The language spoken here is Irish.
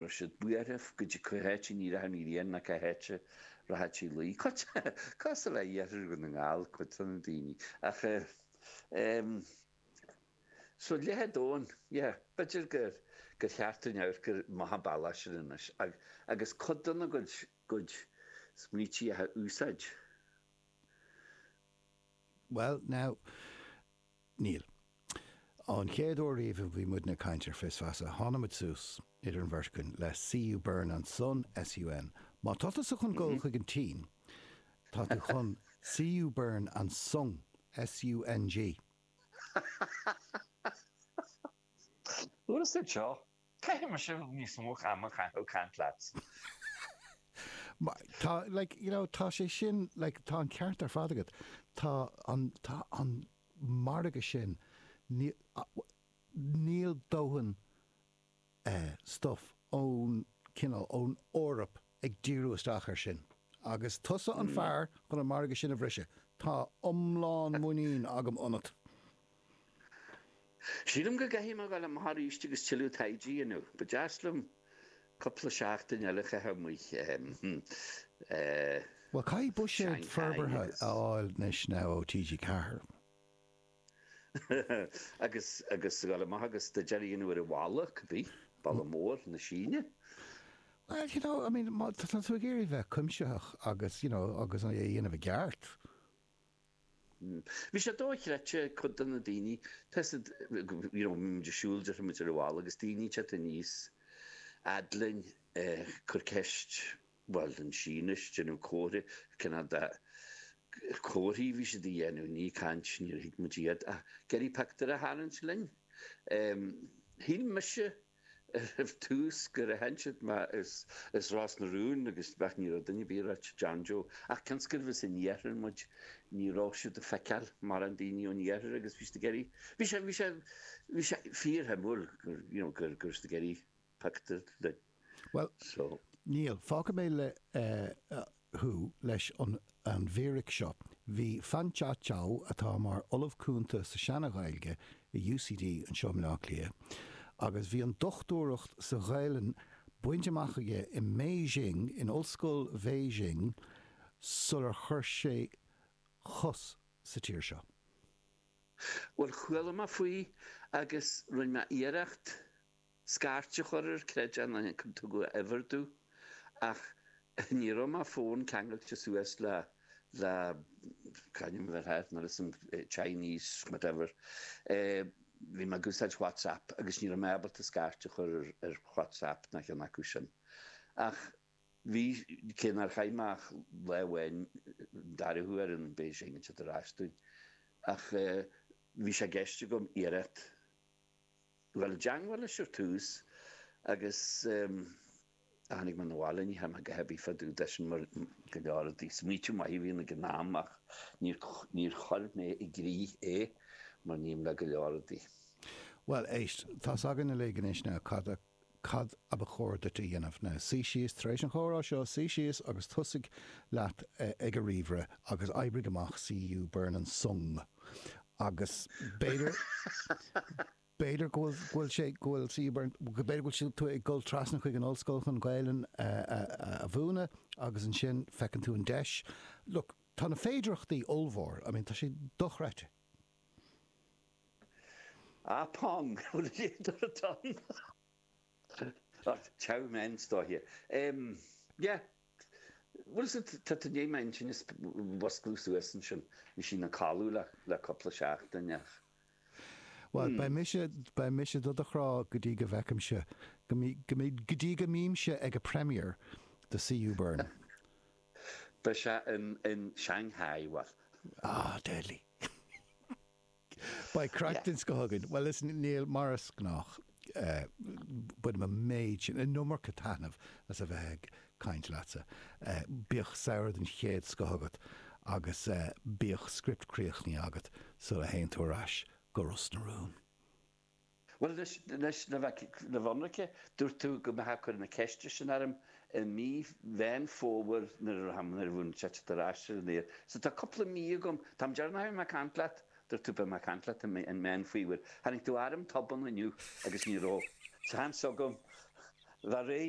Raibh siad buartha goidé cá háit a n-éireochadh an ghrian ná cá háit a rachadh sí a luí. Cosúil le hiarthar Dhún na nGall cuid de na daoine. Ach ehm. So leath an domhain. Yeah. B'fhéidir gur gur cheart dúinn amharc amach an bealach sin anois ag agus cuid de na gcuid gcuid smaointí a úsáid. Bhuel now. Níl. An chéad uair riamh a bhí muidne ag caint ar Fios Feasa, tháinig muid suas, idir an bheirt againn, le CU Burn and Son, SUN. Má tá tusa chun dul chuig an tSín, tá tú chun CU Burn and Sung, SUNG. Bhfuair tú anseo? Caithfidh mise níos mó ama a chaitheamh ag caint leat. Tá, like, you know, tá sé sin, like, tá an ceart ar fad agat. Tá an, tá an margadh sin, níl, níl dóthain eh, stuff ón cineál, ón Eoraip ag díriú isteach ar sin. Agus tusa an fear chun an margadh sin a bhriseadh, tá iomlán muinín agam ionat. Sílim go gcaithfidh mé a dhul amach arís agus tuilleadh taighde a dhéanamh. Ba deas liom cúpla seachtain eile a chaitheamh amuigh i. Bhuel, caithfidh buiséad forbartha a fháil anois now ó TG Ceathair. Agus agus a dhul amach agus go deireadh aon uair i bhfalla, could be, Balla Mór na Síne. Bhuel, you know, I mean, má tá tú ag iarraidh bheith cuimsitheach agus, you know, agus é a dhéanamh i gceart. Bhí sé dóichreidte ag cuid de na daoine, tá siad, you know, bhí muid ag siúl deirfimid ar an bhalla agus daoine ag teacht aníos fhad linn ag cur ceist, bhuel in Sínis, ag déanamh comharthaí, cineál de, comharthaí a bhí siad a dhéanamh, ní caint, níor thuig muid iad ach ag iarraidh pictiúir a tharraingt linn. Shíl mise Ar tús gur aithin siad mé as Ros na Rún agus bheadh ní raibh duine ar bith ag ráit John Joe ach cionn is gurbh as an iarthar muid ní raibh siad ag feiceáil mórán daoine ón iarthar agus bhí siad ag iarraidh bhí sé bhí sé bhí sé fíorshuimiúil gur you know go go raibh siad ag iarraidh pictiúr linn Bhuel so. Níl. Fágfaidh mé le eh thú leis an an bhfíric seo, bhí Fangzhe Qiu, atá mar Ollamh Cúnta sa tSeana-Ghaeilge i UCD anseo i mBleá Cliath, agus bhí an dochtúireacht sa Ghaelainn bainte amach aige i mBéising, in Ollscoil Bhéising, sular chuir sé a chos sa tír seo. Bhuel, chuala mé faoi agus rinne mé iarracht. scairt a chur ar Chreideamh na h-Inc tugadh a uimhir domh ach ní raibh mo fón ceangailte suas le le c'ainm atá air nuair is Chinese whatever bhí mé ag úsáid WhatsApp agus ní raibh mé ábalta scairt a chur ar WhatsApp ná ceann acu sin ach bhí cé nár chaith mé ach lá amháin dara huair in Beijing ag teacht ar ais dúinn ach bhí sé i gceist agam iarracht fháil i dteangmháil leis ar tús agus ehm tháinig mé na bhaile, ní tháim go haibí fadú d'eisean mar go leor rudaí smaoitiú maith a bhí ann ag an am ach níor níor chuir mé i gcrích é mar a ním le go leor rudaí. Bhuel, éist, tá's againn uilig anois now cad a cad a ba chóir duit a dhéanamh ná, suigh síos tar éis an chomhrá seo, suigh síos agus tosaigh leat ag an ríomhaire agus oibrigh amach CU Burn an Song agus b'fhéidir, b'fhéidir go bhfuil sé, go bhfuil CU Burn, b'fhéidir go bhfuil tú ag dul trasna chuig an ollscoil chun Gaelainn a mhúineadh agus ansin feiceann tú an deis. Look, tá na féidireachtaí ollmhór, I mean tá sé dochreidte. Ah pong! Bhfuil a fhios agat an t-am atá? Ach chow men istóiche. Em. Yeah. Bhuel, is it, tá tú i ndiaidh m'intinn a mhuscladh suas ansin. Bhí sí ina codladh le, le cupla seachtain ach. Bhuel, beidh mise, beidh mise do do chrá go dtí go bhfeicimse, go mbí, go mbí, go dtí go mbímse ag a premiere do CU Burn. Beidh sé in in Shanghai, bhuel. Ah, deadly. Beidh craic den scoth againn. Bhuel, listen, Niall, mar is gnách, bainim an méid sin, an iomarca taitneamh as a bheith ag caint leatsa. Bíodh samhradh den chéad scoth agat agus bíodh script críochnaithe agat sula théann tú ar ais go Ros na Rún. Bhuel, le bheith ionraic, dúirt tú go mbeitheá ag cur na ceiste sin orm i mí Mheán Fómhair nuair a bhíonn sé ag teacht ar ais ar an aer. So tá cúpla mí agam. An t-am deireanach a bhí mé ag caint leat. Dúirt tú go mbeadh mé ag caint leat i Meán Fómhair. Tháinig tú orm tobann inniu agus ní raibh seans agam bheith réidh.